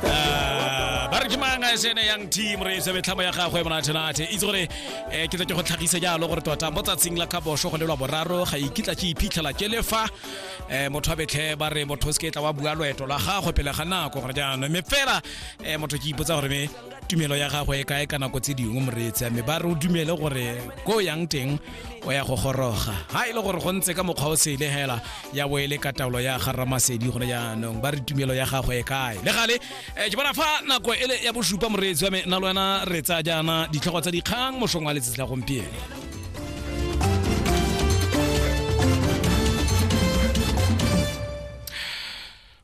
Ah, ba re ke manga se ne yang team re se betlhamo ya gagwe monathenate itse gore eh, ke tla ke go tlhagise jalo gore tota mo tsatsing la ka bosho go lelwa boraro ga ikitla ke iphitlhela ke le fa eh, motho a betlhe ba re motho o se ke tla wa bua loeto la gagwe pele ga nako gore jaanong mme fela eh, motho ke ipotsa gore me tumelo ya gagwe e kae ka nako tse dingwe moreetsi mme ba re o dumele gore ko o yang teng o ya go goroga ga e le gore go ntse ka mokgwa o sele hela ya bo e le ka taolo ya ga ramasedi gone jaanong ba re tumelo ya gagwe e kae le gale um ke bona fa nako e le ya bosupa moreetsi wa me na le wena re tsaya jaana ditlhogo tsa dikgang mosong wa letsatsi la gompieno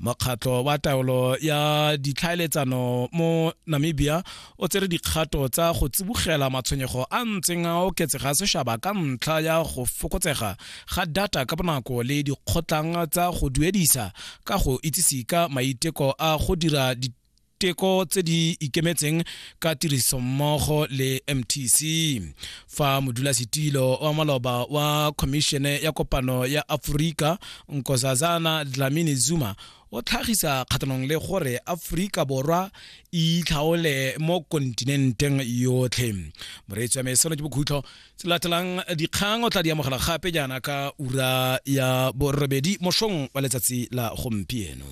mokgatlho wa taolo ya ditlhaeletsano mo namibia o tsere dikgato tsa go tsibogela matshwenyego a ntseng a oketsega sešaba ka ntlha ya go fokotsega ga data ka bonako le dikgotlang tsa go duedisa ka go itsise ka maiteko a go dira diteko tse di ikemetseng ka tirisommogo le mtc fa modulasetilo wa maloba wa khomišene ya kopano ya aforika nkosazana dlamini zuma o tlhagisa kgatlhanong le gore aforika borwa e itlhaole mo kontinenteng yotlhe moreetsi wa meseno ke bokhutlo se latelang dikgang o tla di amogela gape jaana ka ura ya borobedi mošong wa letsatsi la gompieno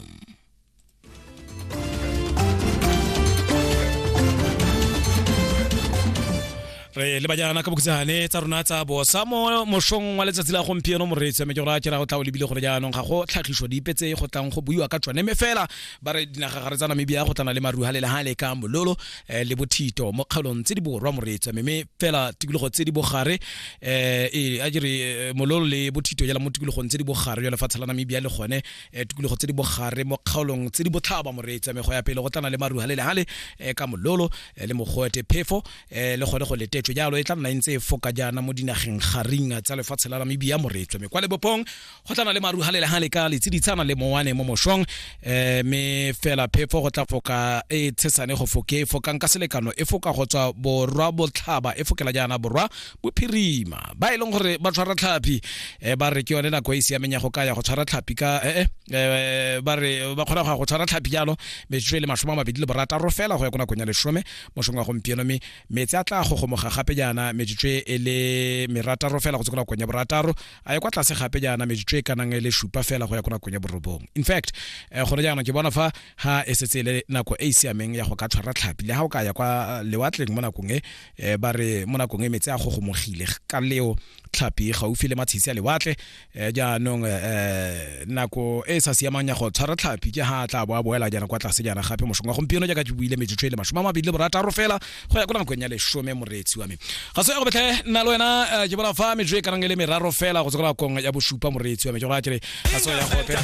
re le bajana ka bokhutsane tsa rona tsa bosa mo mošong wa letsatsi la gompieno moreetsi ame ke gore a kera go tla o lebile gore jaanong ga go tlhagiso dipe tse go tlang go buiwa ka tsone mme fela ba re dinagagare tsa namibia go tlana le maruha le lehale ka mololo eh, le bothito mo kgaolong tse di borwa moreetsi ame mme fela tikologo tse di bogare um a jere eh, mololo le bothito jala mo tikologong tse di bogare jwa lefatshe la namibia le gone eh, tikologo tse di bogare mo kgaolong tse di botlhaba moreetsi mego ya pele go tlana le maruha le lehale eh, ka mololo eh, le mogoete phefo le gone go letetšo jalo e tla nna e ntse e foka jaana mo dinageng garing tsa lefatshe la namibia moreetswe me kwa lebopong go tlana le maruha le lehale ka letsiditshana le mowane mo mošong um me fela phefo go tla foka e tshesane go foke e fokang ka selekano e foka go tswa borwa botlhaba e fokela jaana borwa bophirima ba e leng gore ba tshwara tlhapi eh, ba re ke yone nako e siameng ya go ka ya go tshwara tlhapi ka eh, eh, eh ba re ba kgona go ya go tshwara tlhapi jalo metsotso e le masome a mabedi le borataro fela go ya ko nakong ya lesome mosong wa gompieno mme metsi a tla gogomoga gape jaana metsotso e le merataro fela go tse ko nakong ya borataro a ye kwa tlase gape jaana metsotso e kanang e le supa fela go ya ko nakong ya borobong in fact eh, gone jaana ke bona fa ha e setse e le nako e e siameng ya go ka tshwara tlhapi le ga o ka ya kwa lewatleng mo nakong e e ba re mo nakong e metse a gogomogile ka leo tlhapi gaufi le matshisi a lewatle e jaanong e nako e e sa siamang ya go tshwara tlhapi ke ha tla bo a boela jaana kwa tlase jaana gape mosong wa gompieno jaaka ke buile metsotso e le masome a mabedi le borataro fela go ya ko nakong ya lesome moreetsi wa me ga se ya go betlhe nna le wena ke bona fa metsotso e kanang e le meraro fela go tswa ko nakong ya bosupa moreetsi wa me ke go kere ga se ya gope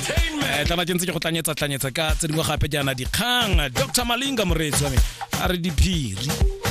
tlana ke ntse ke go tlanyetsa tlanyetsa ka tse dingwe gape jaana dikgang dr malinga moreetsi wa me a re diphiri